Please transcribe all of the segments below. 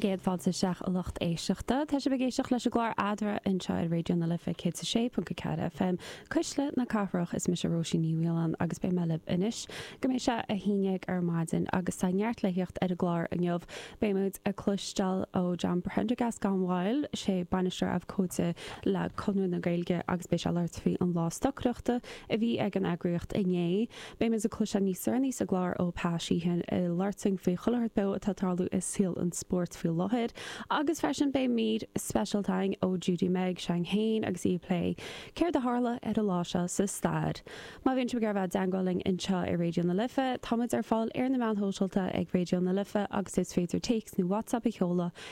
Céad fáilte isteach a lucht éisteachta. Tá sibh ag éisteacht leis an gclár Adhradh anseo ar Raidió na Life 106.4 FM, Cuisle na Cathrach. Is mise Róisín Ní Mhaoláin agus beidh mé libh anois go mbeidh sé a haon dhéag ar maidin agus tá neart le thíocht ar an gclár inniu. Beimid ag cloisteáil ó John Prendergast gan mhoill, is é Bainisteoir Abhcóide le Conradh na Gaeilge agus beidh sé ag labhairt faoi an lá stocaireachta a bhí ag an eagraíocht inné. Beimid ag cloisteáil níos deireanaí sa gclár ó Peadar Sheehan i Lartsaigh faoi chuilearthacht beo atá ag tarlú i saol an spóirt faoi láthair agus freisin beidh mír speisialta againn ó Judy Meg Shang Hain agus í ag plé céard a tharla ar an lá seo sa stair. Má bhíonn sibh ag iarraidh a bheith i dteagmháil linn anseo ar Raidió na Life, táimid ar fáil ar na meáin shóisialta ag Raidió na Life agus is féidir téacs nó WhatsApp a sheoladh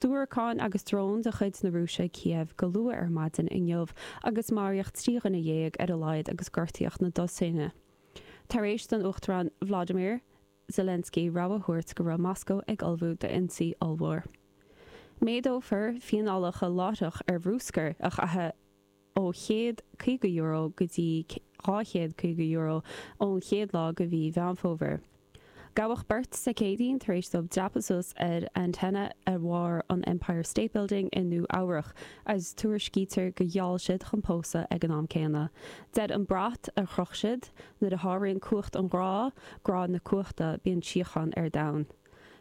diúracáin agus dróin de chuid na Rúise Cíév go luath ar maidin inniu agus maraíodh trí dhuine dhéag ar a laghad agus gortaíodh na dosaena tar éis don Uachtarán Vladimir Zelensky rabhadh a thabhairt go raibh Moscó ag ullmhú d'ionsaí ollmhór. Méadófar fianálacha láithreach ar bhruscar a chaitheamh ó €150 go dtí €250 ón chéad lá de mhí Mheán Fómhair. Gabhadh beirt Dé Céadaoin tar éis dóibh dreapadh suas ar antaine ar bharr an Empire State Building i Nua-Eabhrac agus tuairiscítear gur gheall siad chun pósadh ag an am céanna. Deir an brat a chroch siad, Nuair a sháraíonn cumhacht an ghrá, grá na cumhachta, bíonn síocháin ar domhan.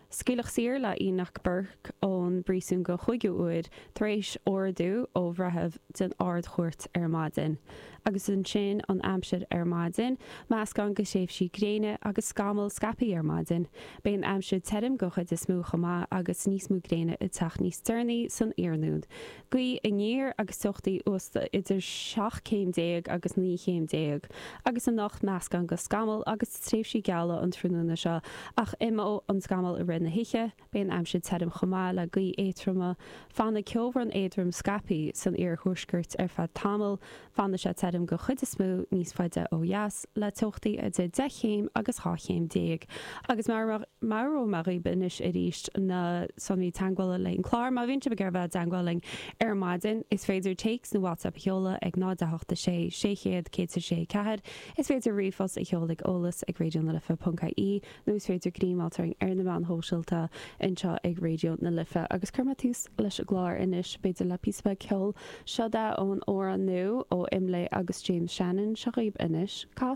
Scaoileadh saor le Enoch Burke ón bpríosún don chúigiú uair tar éis ordú ó bhreitheamh den Ard-Chúirt ar maidin. Agus ansin an aimsir ar maidin, meascán de thréimhsí gréine agus scamaill scaipthe ar maidin. Beidh an aimsir tirim den chuid is mó chomh maith agus níos mó gréine ag teacht níos deireanaí san iarnóin. Gaoth aniar agus teochtaí uasta idir seacht céim déag agus naoi chéim déag agus anocht meascán de scamall agus de thréimhsí geala an tráthnóna seo ach imeoidh an scamall i rith na hoíche. Beidh an aimsir tirim chomh maith le gaotha éadroma. Fanfaidh ceobhrán éadrom scaipthe san iarthuaisceart ar feadh tamaill Fanfaidh sé tirim den chuid is mó, níos faide ó dheas, le teochtaí idir 10 chéim agus 12 chéim. Agus meabhrú daoibh anois arís, na sonraí teagmhála leis an gclár, má bhíonn sibh ag iarraidh a bheith i dteagmháil linn ar maidin, is féidir téacs nó WhatsApp a sheoladh ag 0, 8, 6, 600, 106, 4. Is féidir ríomhphost a sheoladh ag, eolas ag, raidionalife.ie, nó is féidir muid a fháil ar na meáin shóisialta anseo ag Raidió na Life agus cuirfidh mé tús leis an gclár anois, b'fhéidir le píosa beag ceoil. Seo dhaoibh an t-amhrán nua ó Imlé agus James Shannon. Seo dhaoibh anois. Ca.